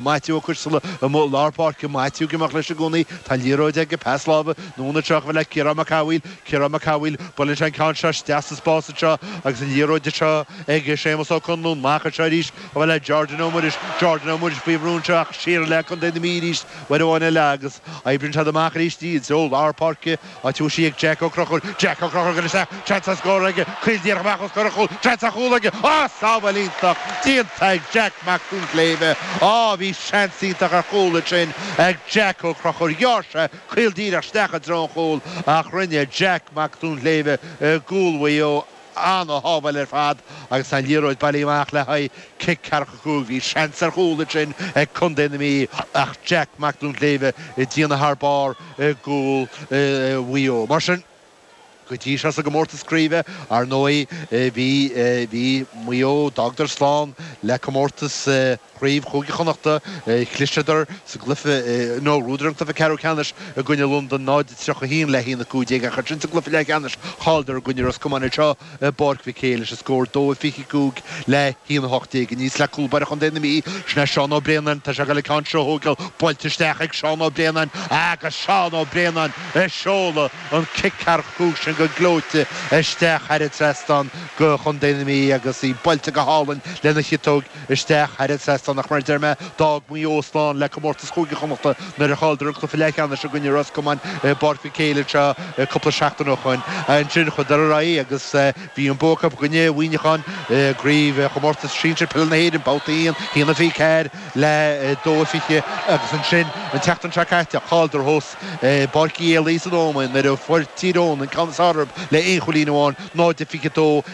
Maitiú Ó Coisteala amuigh lár páirce, Maitiú ag imeacht leis i gcónaí, tá an liathróid aige, pas láimhe anonn anseo chomh fada le Ciarán Mac Cathmhaoil, Ciarán Mac Cathmhaoil, buaileann sé an ceann seo isteach sa spás anseo agus an liathróid anseo ag Séamus Ó Conluain, amach anseo arís chomh fada le Jordan Ó Muiris, Jordan Ó Muiris faoi bhrú anseo ach siar le Contae na Mí arís uair amháin eile agus oibríonn siad amach arís í go lár páirce. Áit a bhfuil sí ag Jack Ó Conchúir. Jack Ó Conchúir ag dul isteach. Seans ar scór aige. Caol díreach amach os comhair an chúl. Seans ar chúl aige. Á! Sábháil iontach déanta ag Jack Mac Duinnshléibhe. Á, bhí seans iontach ar chúl ansin ag Jack Ó Conchúir. Ghearr sé caol díreach isteach i dtreo an chúil ach rinne Jack Mac Duinnshléibhe i gcúl Mhaigh Eo Ana-shábháil ar fad agus an liathróid bailithe amach le haghaidh cic ceathracha cúig. Bhí seans ar chúl ansin ag Contae na Mí ach Jack Mac Duinnshléibhe ag déanamh thar barr i gcúl Mhaigh Eo. Mar sin go dtí seo sa gcomórtas craoibhe, ar ndóigh, bhí Maigh Eo, d'fhágadar slán le comórtas. Chraobh Chúige Chonnachta, chliseadar sa gcluiche nó bhuadar an cluiche ceathrú ceannais i gcoinne Londain 0-31 le 1-15, ach ansin sa gcluiche leathcheannais chailleadar i gcoinne Ros Comáin anseo i bPáirc Mhic Éil leis an scór 2-25 le 1-18 aníos le cúl báire chontae na Mí, Seán Ó Braonáin, tá sé ag dul an ceann seo a thógáil, buailte isteach ag Seán Ó Braonáin agus Seán Ó Braonáin ag seoladh an cic ceathracha cúig sin go gleoite isteach thar an trasnán do Chontae na Mí agus í buailte go hálainn lena chiotóig Isteach thar an trasnán ach mar a deir mé, d'fhág Maigh Eo slán le comórtas Chúige Chonnachta nuair a chailleadar an cluiche leathcheannais i gcoinne Ros Comáin i bPáirc Mhic Éil anseo cúpla seachtain ó shoin. Ansin chuadar ar aghaidh agus bhí an bua acu i gcoinne Mhuineacháin i gCraobh Chomórtas Sinsir Peile na hÉireann, Babhta 1, 1-24 le 2-20, agus ansin an tseachtain seo caite chailleadar thuas i bPáirc Uí Éalaí san Ómaigh nuair a fuair Tír Eoghain an ceann is fearr orthu le haon chúilín amháin, 0-22 i.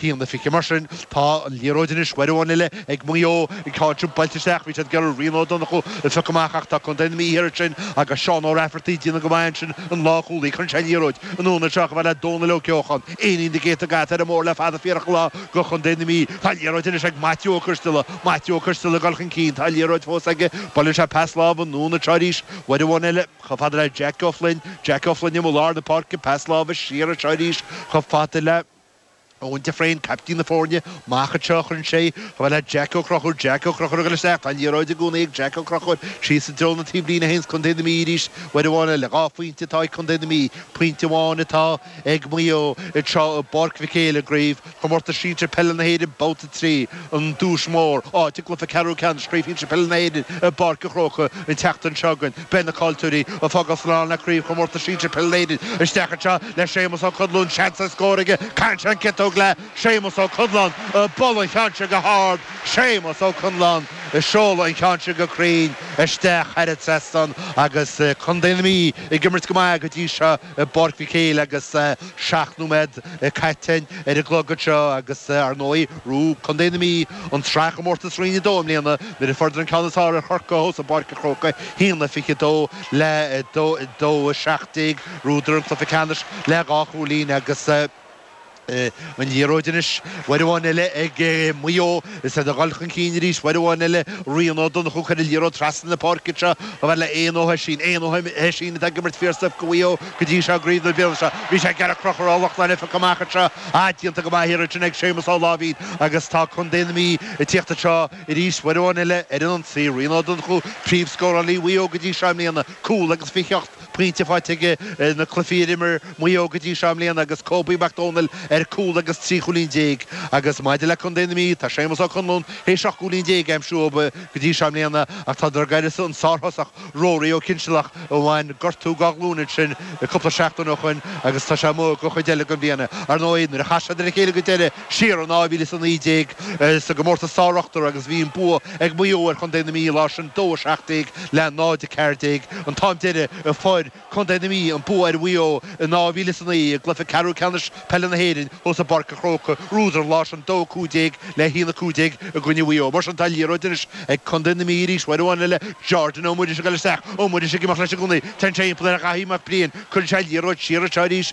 1-20 mar sin. Tá an liathróid anois uair amháin eile ag Maigh Eo. An ceann seo buailte isteach, bhí siad ag iarraidh Rian Ó Donnchú a phiocadh amach ach tá Contae na Mí thiar ansin agus Seán Ó Raifeartaigh ag déanamh go maith ansin an lánchúlaí, cuireann sé an liathróid anonn anseo chomh fada le Dónal Ó Ceocháin. Éinín de ghéata gata ar an mór le fada fiarach lá do Chontae na Mí. Tá an liathróid anois ag Maitiú Ó Coisteala. Maitiú Ó Coisteala ag dul chun cinn. Tá an liathróid fós aige. Buaileann sé pas láimhe anonn anseo arís uair amháin eile. Chomh fada le Jeaic Ó Floinn. Jeaic Ó Floinn amuigh lár na páirce. Pas láimhe siar anseo arís chomh fada le. Eoghan de Fréin, caiptín na foirne, amach a théann sé, chomh fada le Jack Ó Conchúir, Jack Ó Conchúir ag dul isteach, tá an liathróid i gcónaí ag Jack Ó Conchúir, síos i dtreo na taobhlíne a théann Co. na Mí arís, uair amháin eile, dhá phointe atá ag Co. na Mí, pointe amháin atá ag Maigh Eo anseo i bPáirc Mhic Éil i gCraobh Chomórtas Sinsear Peile na hÉireann, Babhta 3. an duais mhór, áit ag cluiche ceathrú ceannais Chraobh Shinsir Peile na hÉireann i bPáirc an Chrócaigh an tseachtain seo againn. Beidh na caillteoirí ag fágáil slán le Craobh Chomórtas Sinsir Peile na hÉireann isteach anseo le Séamus Ó Conláin seans ar scór aige, caitheann sé an ciotóg le Séamus Ó Conláin ag bualadh an cheann sin go hard Séamus Ó Conláin ag seoladh an ceann sin go cruinn isteach thar an trasnán agus Contae na Mí ag imirt go maith go dtí seo. i bPáirc Mhic Éil agus seacht nóiméad caite ar an gclog anseo agus ar ndóigh rug Contae na Mí an tSraithchomórtas Roinn 2 i mbliana nuair a fuaireadar an ceann is fearr ar Chorcaigh thuas i bPáirc an Chrócaigh a 1-22 le 2-17. Rugadar an cluiche ceannais le dhá chúilín agus. an liathróid anois. Uair amháin eile ag Maigh Eo. Is iad ag dul chun cinn arís. Uair amháin eile Rian Ó Donnchú a chuir an liathróid trasna na páirce anseo chomh fhad le Eoin Ó hOisín. Eoin Ó hOisín atá ag imirt fíormhaith do Mhaigh Eo go dtí seo i gcraobh na bliana seo. Bhí sé ag gearradh crochaire ó Loch Lannai feicthe amach anseo. Ah déanta go maith ar fad ansin ag Séamus Ó Láimhín agus tá Contae na Mí ag tíocht anseo arís. Uair amháin eile ar an ionsaí Rian Ó Donnchú príomhscórálaí Mhaigh Eo go dtí seo i mbliana. Cúl agus fiche ocht. pointe fáite aige ar na cluichí a d'imir Maigh Eo go dtí seo i mbliana agus Kobe Mac Domhnaill ar cúl agus trí chúilín déag agus maidir le contae na Mí tá Séamus Ó Conláin théis seacht gcúilín déag a aimsiú go dtí seo i mbliana ach tá siad d'uireasa an sárthosach Rory Ó Cinnsealach a bhain gortú dá ghlúin ansin cúpla seachtain ó shoin agus tá sé amuigh den chuid eile den bhliain. Ar ndóigh nuair a chas siad ar a chéile go deireadh siar in 2019 sa gcomórtas sár-ochtar agus bhí an bua ag Maigh Eo ar chontae na Mí an lá sin, 2, 17 le 0, 14, an t-am deiridh a fuair contae na Mí an bua ar Mhaigh Eo in 2009 i gcluiche ceathrú ceannais peile na hÉireann thuas i bPáirc an Chrócaigh, rugadar an lá sin, 2, 15 le 1, 15 i gcoinne Mhaigh Eo. Mar sin tá an liathróid anois ag contae na Mí arís, uair amháin eile Jordan Ó Muiris ag dul isteach, Ó Muiris ag imeacht leis i gcónaí, teann sé timpeall ar Dhaithí Mac Briain, cuireann sé an liathróid siar anseo arís,